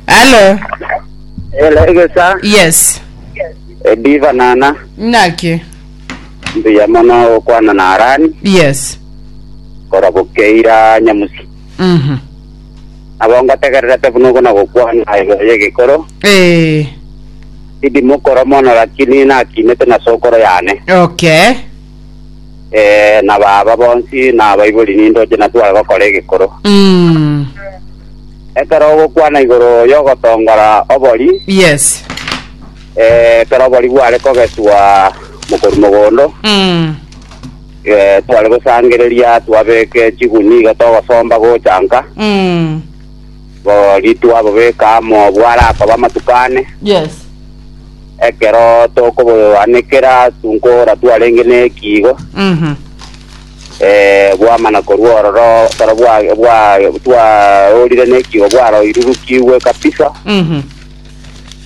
Hello. Elegesa Yes. ediva nana Naki. mbuya mono gokwana na arani Yes. kora bokeira nyamusi Mhm. abo ngategererete buna ogo na gokwana igoro y'egekoro Eh. idi mokoro mono lakini nakinete na sokoro yane Okay. eh, na baba bonsi na abaibori nindoche na tware gokora egekoro. Mm. Ekero ogokwana igoro y'ogotongora obori, Yes. eh, ekero obori bware kogeswa mokoru mogondo, Mm. eh, tware gosangereria twabeke chiguni iga togosomba gochanka, Mm. Bo ritu ababeke amo obwo arakoba amatuko ane, Yes. ekero tokoboanekera tunkora twarenge nekiigo, Mhm. eh, bwamana korwa ororo ekero bwa bwa twarorire nekiigo bwaroirurukigwe kabisa. Mhm.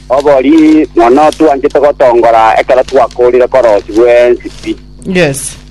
Obori mono twanchete gotongora ekero twakorire korosi bwensi pi. Yes.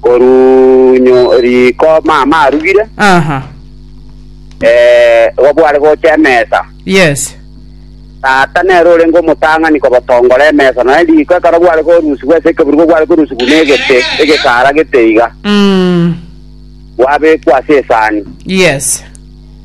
Koruu nyo- riko mama arugire, Aha. eh, igo bware gocha emesa. Yes. Tata nere orenge omotang'ani kobotongora emesa, nonya riko ekero bware korusigwa ase ekeburugo gware korusigwa na egete, egesaara gete iga, Mm. gwabekwa ase esani. Yes.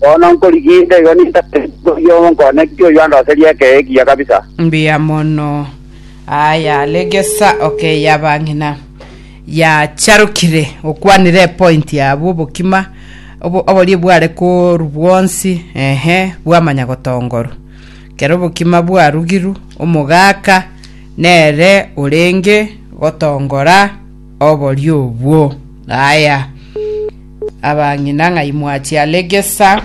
Bono nkorigia inda igo nintambe nkorigie omonkone ki oyio andoserie ekeye ekiya kabisa. Mbuya mono. Aa yaregesa okay yabang'ina yacharokire gokwanera epoint yabo obokima obo- oborie bware koru bwonsi ehe bwamanya gotongoru kero obokima bwarugiru omogaka nere orenge gotongora oborie obwo aya Abang'ina ng'ai mwachia regesa?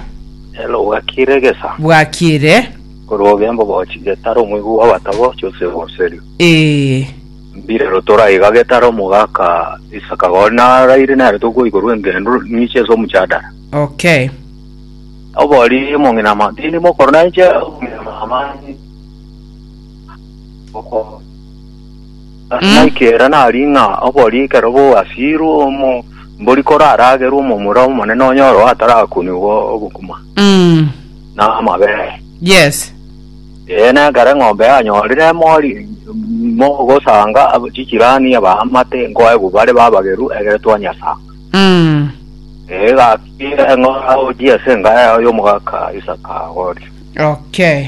Elo bwakiire egesa. Bwakiire. Korwa ogembo bochi getara omoigwa bwa batabo Joseph Oserio. Ee. Mbire rotora iga getara omogaka Isaka Gori naraire nere tokoikorwa engendu ninche ase omchadara. Okay. Obori omong'ina ma tindi mokoro nainche omong'ina mama. Oko. Naki ere nari ng'a obori ekero bogasiirwe omombori koraragerwe omomura omonene onye oro atarakunigwa obokima Mm. na amabere. Yes. Ee, na ekero eng'ombe yanyorire emori mogosanga ab- chijirani abaamate nkoegwa bare babageru egere twanyasanga. Mm. Ee, gaki eng'ora oji ase enga yago y'omogaka Isaka agori. Okay.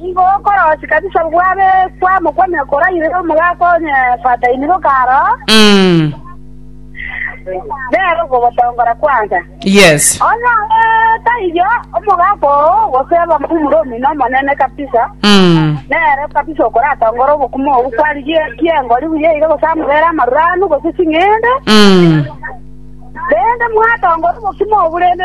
Nigo okorosia kabisa bwabe kwamokwamire koraire omogaka onye fataini bokaro, Mm. nere okogotongora kwansa. Yes. Onye ore taiyo, omogaka oo gose abamomura omino omonene kabisa, Mm. nere kabisa okoratongora obokumo obwo kwarigie kiengori buya iga gose amobere amarure anu gose ching'ende, Mm. rende mwatongora obokumo obwo rende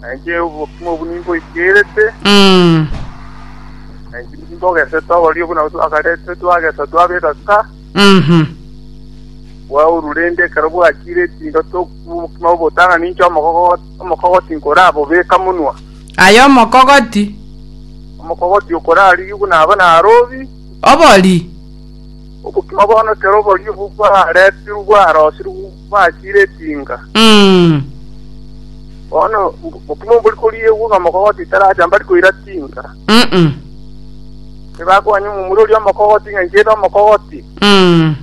Na inche obokima obo nimboikerete, Mm. na inche nimbogesete oborio buna otu akarete twagesa twabeka ka, Mhm. bwauru rende ekero bwachire etindo tokuba obokima obotana ninche omogogo- omokogoti nkorabobeka munwa. Aye omokogoti Omokogoti okorarigia buna aba narobi, obori. obokima bono ekero oborio obwo bwaretirwe bwarosirwe bachire etinga. Mm. Bono mb- bokima mbori koriegwa ng'a omokogoti taracha mbari koira tinga. Mm-mm. Tibakoganya omomura oria omokogoti ng'a inchete omokogoti. Mm.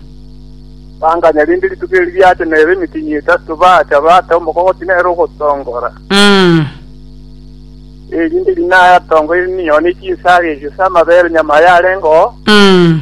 Banganya rinde rituko eri riacha nere emitinyi etato bacha bata omokogoti nere ogotongora. Mm. Erinde rinaya atongo eri ninyone chinsaga erio sa amabere nyama yarengeo. Mm.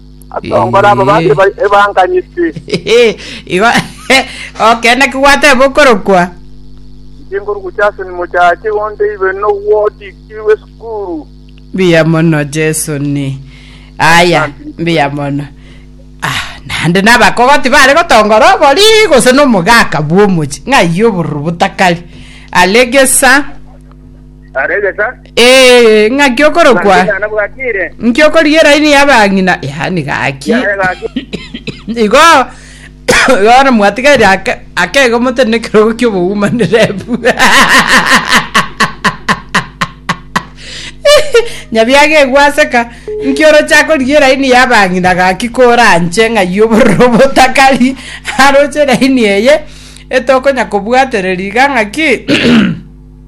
Atongore aba bande Eh. eba- ebanganyiti. Igo okende ki gwateba okorokwa? Inche nkoruku Jason Mochache onde ibe nogwotikirwe esukuru. Mbuya mono Jesu ni. Aya, mbuya mono. Ah, nande nabakogoti bare gotongora obori gose nomogaka bwomochi ng'aiyo obororo botakari. Alegesa. Aregesa. Ee, ng'aki okorokwa. Ngaki nana bwatire. Nki okorigia eraini y'abang'ina? Yaani gaki. Yaani gaki. Igo, Yohana Mwatigairi ake- akega omotene nekerogo ki'oboumanerebu. Nyabiaga egwaseka. Nki oroche akorigia eraini y'abang'ina gaki koranche ng'ai obororo botakari? Aroche eraini eye etokonyakobwatereria iga ng'aki?